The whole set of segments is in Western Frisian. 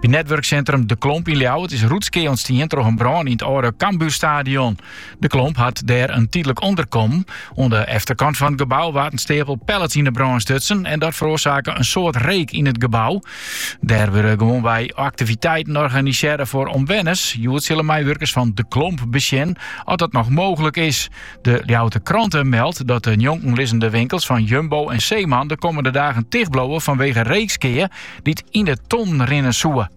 By netwurksintrum De Klomp yn Ljouwert is rûtskea ûntstien troch in brân yn it âlde Cambuurstadion. De Klomp hat dêr in tydlik ûnderkommen. Oan de efterkant fan it gebou waard in steapel pallets yn 'e brân stutsen en dat feroarsake in soad reek yn it gebou. Dêr wurde gewoanwei aktiviteiten organisearre foar omwenners. Hjoed sille meiwurkers fan De Klomp besjen oft dat noch mooglik is. De Ljouwter Krante meldt dat de njonken lizzende winkels fan Jumbo en Zeeman de kommende dagen tichtbliuwe fanwege reekskea. dy't yn de ton rinne soe.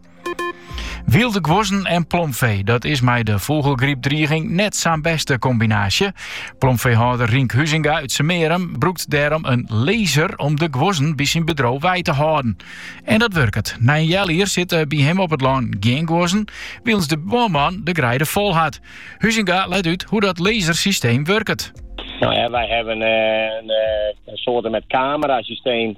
Wylde guozzen en plomfee, dat is mei de fûgelgrypdriging net sa'n beste kombinaasje. Plomfeehâlder Rink Huzinga uit Semerum brûkt dêrom in laser om de guozzen by syn bedriuw wei te hâlden. En dat wurket. Na in healjier sitte by him op it lân gjin guozzen, wylens de buorman de greide fol hat. Huzinga leit út hoe dat lasersysteem wurket. No ja, wij hebben eh, een, eh, een soort met camerasysteem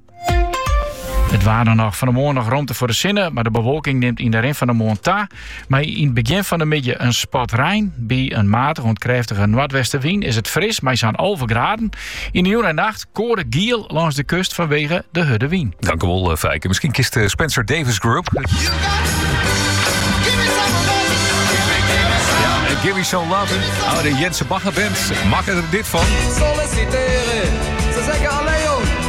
It waar dan noch. Fan 'e moarn noch romte foar de sinne, mar de bewolking nimt yn de rin fan de moarn ta. Mei yn it begjin fan de middei in spat rein. By in matige oant krêftige noardwestenwyn is it fris mei sa'n alve graden. Yn de jûn en nacht koade giel lâns de kust fanwege de hurde wyn. Dank u wel, eh, Fijke. Misschien kent u de Spencer Davis Group. Give me some lovin'. Oh, de Jensen Bagger Band maakt er dit van. Solliciteren. Ze zeggen alleen